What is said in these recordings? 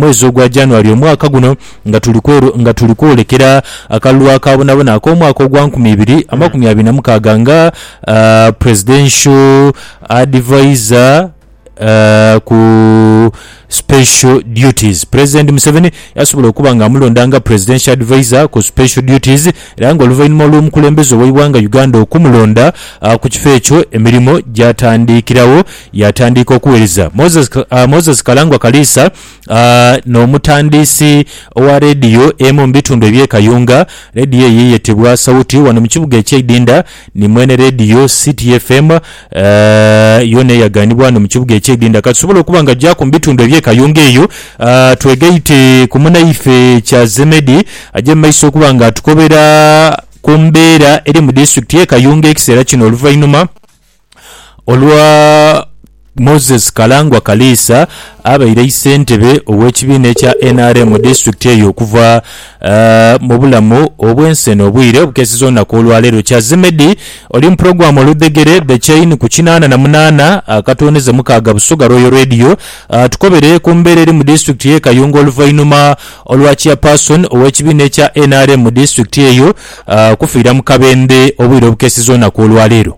mwezi ogwa January omwaka guno nga tuli kweru nga tuli kwolekera akalulu akabonabona ak'omwaka ogwa nkumi ibiri amakumi abiri na mukaaga nga Presidential Advisor ku Special Duties. President Museveni yasobola okuba nga amulonda nga Presidential Advisor ku Special Duties era nga oluvainhuma olw'omukulembeze ow'eighanga Uganda okumulonda ku kifo ekyo emirimo gyatandikiragho. Yaatandiika okuwereza Moses, Moses Kalangwa Kaliisa n'omutandiisi owa leediyo emu mu bitundu eby'e Kayunga. Leediyo eyo eyetebwa Sauti wano mu kibuga eky'e Idinda ni mwene leediyo City FM yoona eyaganibwa wano mu kibuga eky'e Idinda. Katusobole okuba nga jaaku mu bitundu eby'e Kayunga eyo twegaite ku munaife Kyazemedi aje mu maiso okuba nga atukobera ku mbeera eri mu disitulikiti y'e Kayunga ekiseera kino oluvainhuma Olwa Moses Kalangwa Kaliisa abaire eisentebe ow'ekibiina ekya nrm mu disitulikiti eyo okuva mu bulamu obw'ensi eno obwire obukeeseza olunaku olwaleero. Kyazimedi oli mu pulogulaamu Oludhegere, The Chain ku kinaana na munaana akatondeze mukaaga Busoga Royal Radio. Atukobere ku mbeera eri mu disitulikiti y'e Kayunga oluvainhuma olwa Chairperson ow'ekibiina ekya nrm mu disitulikiti eyo okufiira mu kabembe obwire obukeeseza olunaku olwaleero.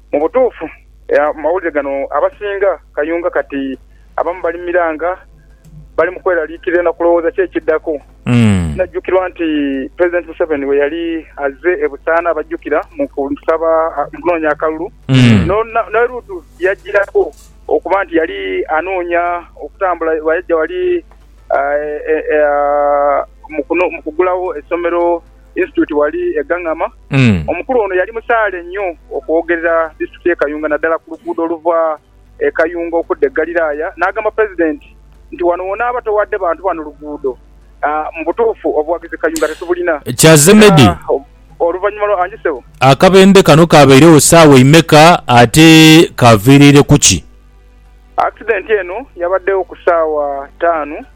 Mu butuufu, amawulire gano abasinga kayunga kati abamu bali mu miranga bali mu kweraliikirira na kulowooza ki ekiddaku. Kinajjukirwa nti Pulezidenti Museveni bwe yali azze e Busaana abajjukira mu kusaba mu kunoonya akalulu, n'e Luutu yajjirako okuba nti yali anoonya okutambula bweyajja wali mu kugulawo essomero. Institute ghali e Gangama. Omukulu ono yali musaale nnyo okwogerera disitulikiti y'e Kayunga naddala ku luguudo oluva e Kayunga okudda e Galiraaya n'agamba Pulezidenti nti wano w'onaaba towadde bantu bano luguudo mu butuufu obuwagizi Kayunga tetubulina. Kya Zemedi, Oluvannyuma lwa. Angi ssebo. Akabende kano kaabairegho ssaawa imeka ate kaaviiriire ku ki? Akisidenti eno yabaddewo ku ssaawa taanu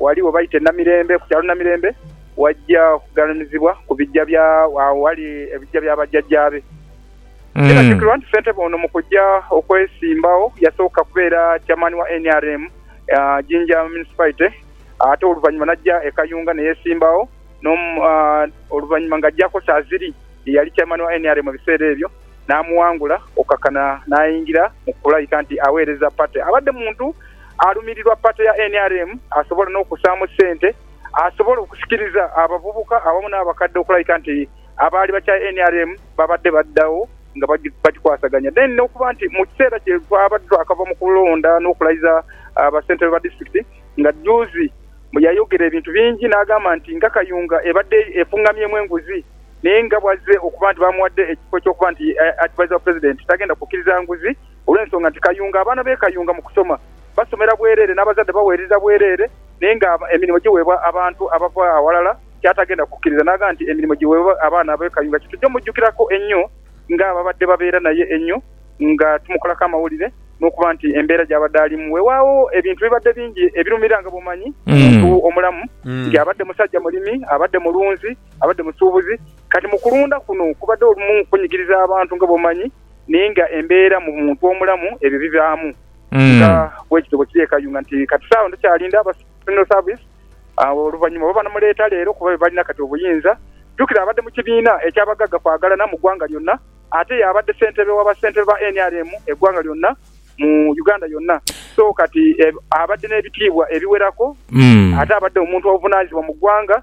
Wali we baita e Namirembe, ku kyalo Namirembe, waja okugalamizibwa ku bigya bya agho ghali ebigya bya bajjajjaabe. Kinajukirwa nti ssentebe ono mu kuja okwesimbagho yasooka kubeera chairman wa nrm Jinja Municipality ate oluvannyuma naja e Kayunga neyesimbagho oluvannyuma nga ajjako Saziri ye yali chairman wa nrm mu biseera ebyo namuwangula okukakana nayingira mu kulayika nti aweereza party. Abadde muntu alumirirwa pate ya nrm asobola n'okussaamu sente asobole okusikiriza abavubuka awamu n'abakadde okulabika nti abaali bakyaye nrm babadde baddawo nga bagikwasaganya then n'okuba nti mu kiseera kye twabadde twakava mu kulonda n'okulayiza bassentebe ba disitulikiti nga juuzi yayogera ebintu bingi n'agamba nti nga Kayunga ebadde efung'amyemu enguzi naye nga bw'azze okuba nti bamuwadde ekifo ky'okuba nti Adviser wa Pulezidenti tagenda kukkiriza nguzi Olw'ensonga nti Kayunga, abaana be Kayunga mu kusoma basomera bwereere n'abazadde baweererera bwereere naye nga emirimu giweebwa abantu abava aghalala ky'atagenda kukkiriza n'agamba nti emirimu giweebwe abaana be Kayunga kye tujja mujjukirako ennyo ng'ababadde babeera naye ennyo nga tumukolaku amawulire n'okuba nti embeera gy'abadde alimu weewaawo ebintu bibadde bingi ebirumira nga bw'omanyi omuntu omulamu nti abadde musajja mulimi, abadde mulunzi, abadde musuubuzi kati mu kulunda kuno kubadde olumu kunyigiriza abantu nga bw'omanyi naye nga embeera mu muntu omulamu ebyo bibaamu nga bwekityo bwekiri e Kayunga nti kati saagho ndhukyalinda aba funeral service oluvanyuma oba banamuleeta leero kuba bebalina kati obuyinza. Jukira abadde mu kibiina eky'abagagga kwagalana mu gwanga lyonna ate y'abadde ssentebe wa bassentebe ba nrm e gwanga lyonna mu Uganda yonna so kati abadde n'ebitiibwa ebiwerako ate abadde omuntu ovunanyizibwa mu gwanga.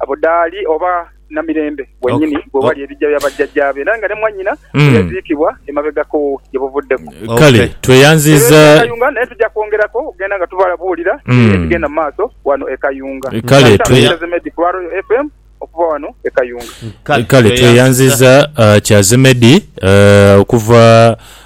Abo dhaali oba Namirembe wenyini we wali ebija bya bajjajjaabe, era nga ne mwanyina we yaziikibwa emabegako gye buvuddeku. Kale tweyanziiza. Era e Kayunga naye tuja kwongerako okugenda nga tubalabuulira ebigenda mu maaso wano e Kayunga. Kale Kyazemedi ku lwa Royal FM okuva wano e Kayunga. Kale tweyanziiza Kyazemedi okuva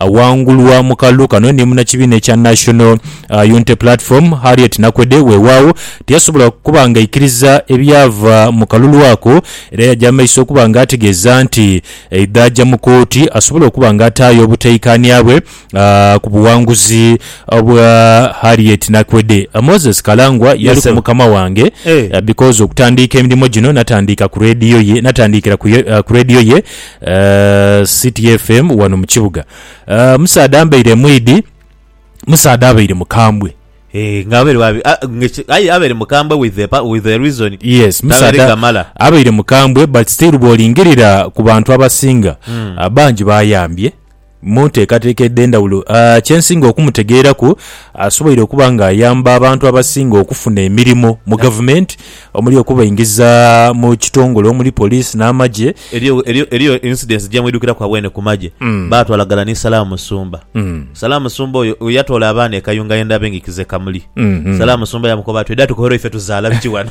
Awangulwa mu kalulu kano ni munnakibiina ekya National Unity Platform, Harriet Nakwede, weewaawo tiyasobola kuba ng'aikiriza ebyava mu kalulu ako era yaja mu maiso okuba ng'ategeeza nti aidha aja mu kooti asobole okuba ng'ataayo obutaikaania bwe ku buwanguzi bwa Harriet Nakwede. Moses Kalangwa yali ku mukama wange because okutandiika emirimo gino natandiika ku leediyo ye, natandiikira ku leediyo ye, City FM wano mu kibuga. Eh, omusaadha ambaire emwidi, omusaadha abaire mukambwe. Eh, nga abaire wabi- a- nga eki- aye abaire mukambwe with the pa- with the reason Yes, tabaire musaadha gamala abaire mukambwe but still bwolingirira ku bantu abasinga ah, bangi bayambye. Mu nteekateeka edh'endhawulo, kye nsinga okumutegeeraku asoboire okuba ng'ayamba abantu abasinga okufuna emirimo mu gavumenti omuli okubaingiza mu kitongole omuli poliisi n'amagye. Eriyo incidence gye mwidhukiraku agho eno ku magye, baatwala ghala ni Salah Musumba. Salah Musumba oyo yatoola abaana e Kayunga yenda abengikize kamuli. Salah Musumba yamukoba ati, Oidha tukohera oife tuzaala biki ghano?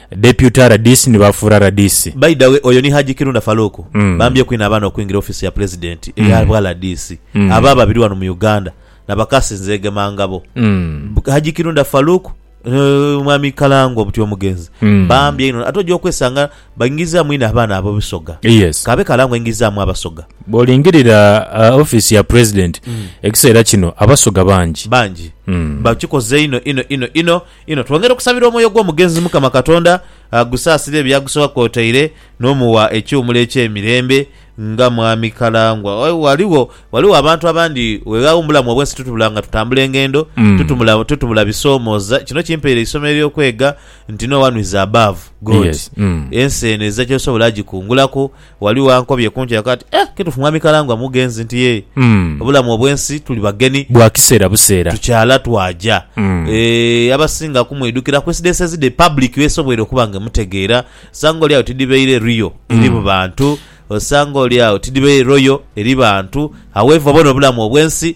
Deputy rdc ni bafuura rdc. By da way oyo ni Hajji Kirunda Farouk bambye kwine abaana okwingira office ya Pulezidenti eya bwa rdc aba babiri wano mu Uganda na bakasi nzege mangabo Hajji Kirunda Farouk ni mwami Kalangwa buti omugenzi bambye inho ate oja okwesanga baingiza mwine abaana abo bisoga Yes. kabe Kalangwa aingizamu abasoga Bwolingirira uh, office ya President ekiseera kino abasoga bangi. bangi bakikoze inho inho inho inho Inho twongera okusabira omwoyo gw'omugenzi Mukama Katonda agusaasire by'agusoka kwotaire n'omuwa ekiwumulo eky'emirembe nga Mwami Kalangwa. Ghaligho ghaligho abantu abandi weghagho mu bulamu obw'ensi tutubula nga tutambula engendo, tutumula tutubula bisoomooza. Kino kimpaire eisomo ery'okwega nti no one is above God. Yes. Mm. Ensi eno ezira ky'osobola agikungulaku. Ghaligho ankobye kuntu yaka ati, Eh, kitufu Mwami Karangwa mugenzi nti yee, obulamu obwensi tuli bageni, Bwa kiseera buseera. tukyala twaja. Eeh, abasinga kumwidhukira coincidences dhe public bwesobwoire okuba nga emutegeera. Osanga oli agho tidhibaire real eri mu bantu, osanga oli agho tidhibaire royal eri bantu, however bona obulamu obwensi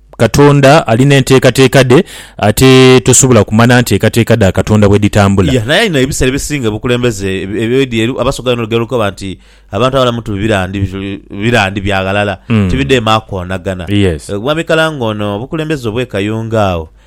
Katonda ali n'enteekateeka dhe, ate tosobola kumanha nteekateeka dha Katonda bwe dhitambula. Iya, naye alina ebisera ebisinga obukulembeze ebyo edyeru. Abasoga bano olugero lukoba nti, Abantu abalamu ti bibira ndi bibira ndi bya ghalala, ti bidheema koonagana. Yes. Mwami Kalangoono, obukulembeze obw'e Kayunga agho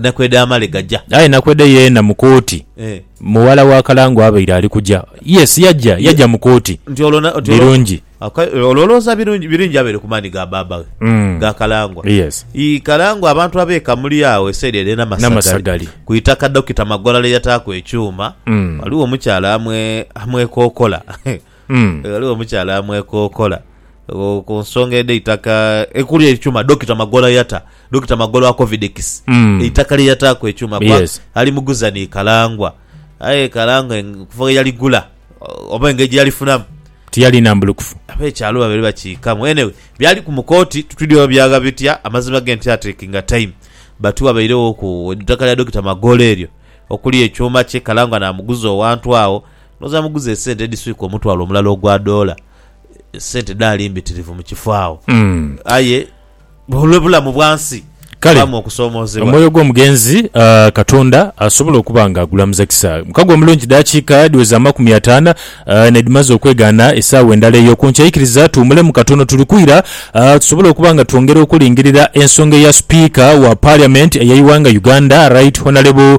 Nakwede amale gaja. Aye Nakwede yeena mu kooti, mughala wa Kalango abaire ali kuja. Yes, yaja, yaja mu kooti. Nti olwo na, nti olwo. Birungi. Okay, olwo olowooza Birungi, Birungi abaire ku maani ga baaba ghe, ga Kalangwa? Yes. I, Kalangwa abantu ab'e Kamuli agho esaidi ere e Namasagali, Namasagali. ku itaka Dokita Magola lye yataaku ekyuma, ghaligho omukyala amwe, amwekokola. Ghaligho omukyala amwekokola ku nsonga edh'eitaka ekuli ekyuma Dokita Magolo yata, Dokita Magolo akovidekisi eitaka lye yataaku ekyuma kuba alimuguza ni Kalangwa. Aye Kalangwa okuva ghe yaligula oba engeri gye yalifunamu, Tiyali nambulukufu. ab'ekyalo babaire bakiikamu. Anyway, byaliku mu kooti titwidhi oba byagha bitya, amazima ge nti atekinga time but wabaireghoku eitaka lya Dokita Magolo eryo okuli ekyuma kye Kalangwa naamuguza owantu agho. Ndhowooza amuguza esente edhiswika omutwalo omulala ogwa doola, sente dhaali mbitirivu mu kifo agho. Aye olw'obulamu bwa nsi Kale, baamu okusoomoozebwa. Omwoyo gw'omugenzi ah, Katonda asobola okuba nga agulamuza kisa. Mukago omulungi dakiika dhiweza amakumi ataana ah, nedhimaze okwegaana esaawa endala eyo ku nkya. Ikiriza tuwumulemu katono. Tuli kwira ah, tusobole okuba nga twongera okulingirira ensonga eya Sipiika wa Parliament ey'eighanga Uganda Right Honourable